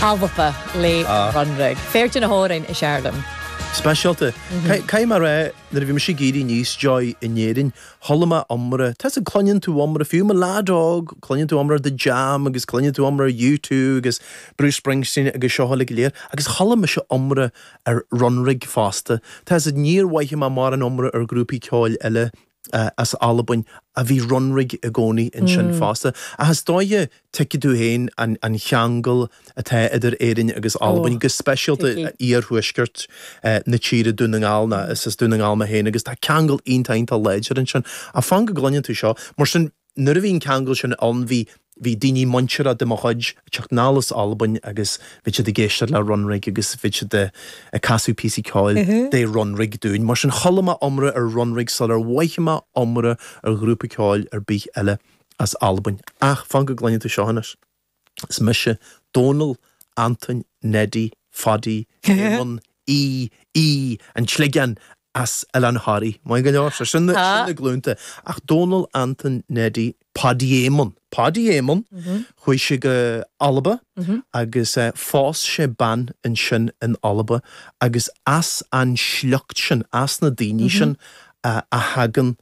Alba, le Runrig. Fear de na hamhráin is fhearr liom. Speisialta. Caithfidh mé a rá, nuair a bhí mise ag éirí aníos domh in Éirinn, chuala mé iomrá, tá a fhios a'd, cluineann tú iomrá, fiú i mo leaid óg, cluineann tú iomrá ar The Jam agus cluineann tú iomrá ar U2 agus Bruce Springsteen agus seo uilig go léir, agus chuala mise iomrá ar Runrig fosta. Tá a fhios a'd, níor mhothaigh mé mórán iomrá ar ghrúpaí ceoil eile as Albain, ach bhí Runrig i gcónaí ansin fosta. Ach is dóiche, tuigfidh tú féin an cheangal atá idir Éirinn agus Albain, go speisialta iarthuaisceart na tíre, Dún na nGall, nó is as Dún na nGall mé féin, agus tá ceangal iontach, iontach láidir ansin. Ach fan go gcluineann tú seo, mar sin. Nuair a bhí an ceangal sin ann bhí bhí daoine muinteartha de mo chuid ag teacht anall as Albain agus bhí siad ag éisteacht le Runrig agus bhí siad ag casadh píosaí ceoil de Runrig dúinn. Mar sin chuala mé iomrá ar Runrig sular mhothaigh mé iomrá ar ghrúpa ceoil ar bith eile as Albain. Ach fan go gcluineann tú seo anois. Is mise Dónall Antoin Neidí Phaidí Éamoinn Aoidh Aoidh an tSligeáin as Oileán Thoraí. Maith go leor, so sin na glúnta. Ach Dónall Antoin Neidí Phaidí Éamoinn, Paidí Éamoinn, chuaigh sé go Alba agus phós sé bean ansin in Alba agus as an sliocht sin, as na daoine sin a thagann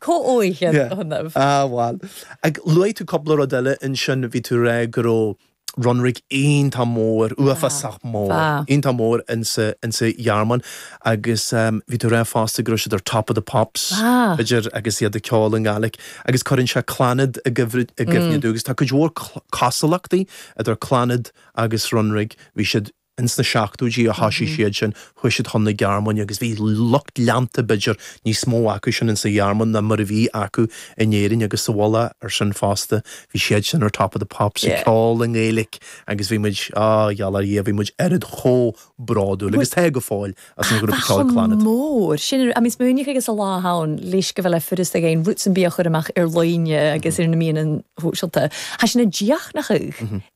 Comhfhios a dhéanamh. Á, bhuel. Ach luaigh tú cúpla rud eile ansin, bhí tú a rá go raibh Runrig iontach mór, uafásach mór, iontach mór in sa, in sa Ghearmáin agus bhí tú a rá fosta go raibh siad ar top of the pops, b'fhéidir, agus iad ag ceol i nGaeilic agus cuireann sé Clannad i gcuimhne domh agus tá cuid mhór cosúlachtaí idir Clannad agus Runrig, bhí siad. Ins na seachtóidí a thoisigh siad sin, chuaigh siad chun na Gearmáine agus bhí lucht leanta, b'fhéidir, níos mó acu sin ins an Ghearmáin ná mar a bhí acu in Éirinn agus sa mhullach air sin fosta. Bhí siad sin ar Top of the Pops ag ceol i nGaeilic agus bhí muid, á, gheall ar Dhia, bhí muid oiread chomh bródúil agus tá go fóill as an ghrúpa ceoil Clannad. Bheadh, chomh mór sin. I mean smaoinigh agus an lá atá ann, leisce a bheith le Foras na Gaeilge, Roots and Bia a chur amach ar líne agus ar na meáin shóisialta. Thá sin ag deachnachadh.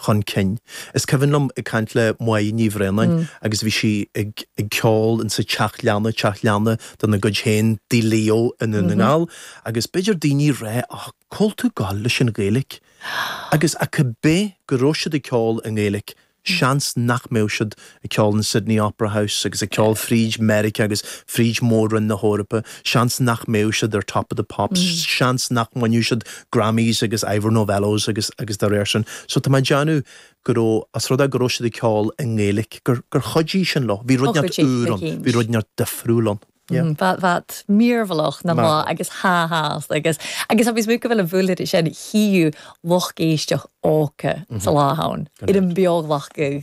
chun cinn. Is cuimhin liom ag caint le Moya Ní Bhraonáin agus bhí sí ag ceol in sa teach leanna, teach leanna de na gcuid féin Tigh Leo i nDún na nGall agus b'fhéidir daoine a rá á cá bhfuil tú ag goil leis an Ghaeilic agus ach ab é go raibh siad ag ceol i nGaeilic seans nach mbeadh siad ag ceol sa Sydney Opera House agus ag ceol fríd Mheiriceá agus fríd Mhór-Roinn na hEorpa, seans nach mbeadh siad ar Top of the Pops, seans nach mbainfeadh siad Grammys agus Ivor Novellos agus agus dá réir sin. So tá mé ag déanamh go raibh, as rud é go raibh siad ag ceol i nGaeilic, gur gur chuidigh sin leo, bhí rud ineacht úr ann, bhí rud ineacht difriúil ann. Bheadh bheadh míormhailleach na mba agus ha ha as agus agus agus muid go bhfuil an bhuailed is ea an chíú lucht éisteach óca sa lá ann, ar an mbeoglach go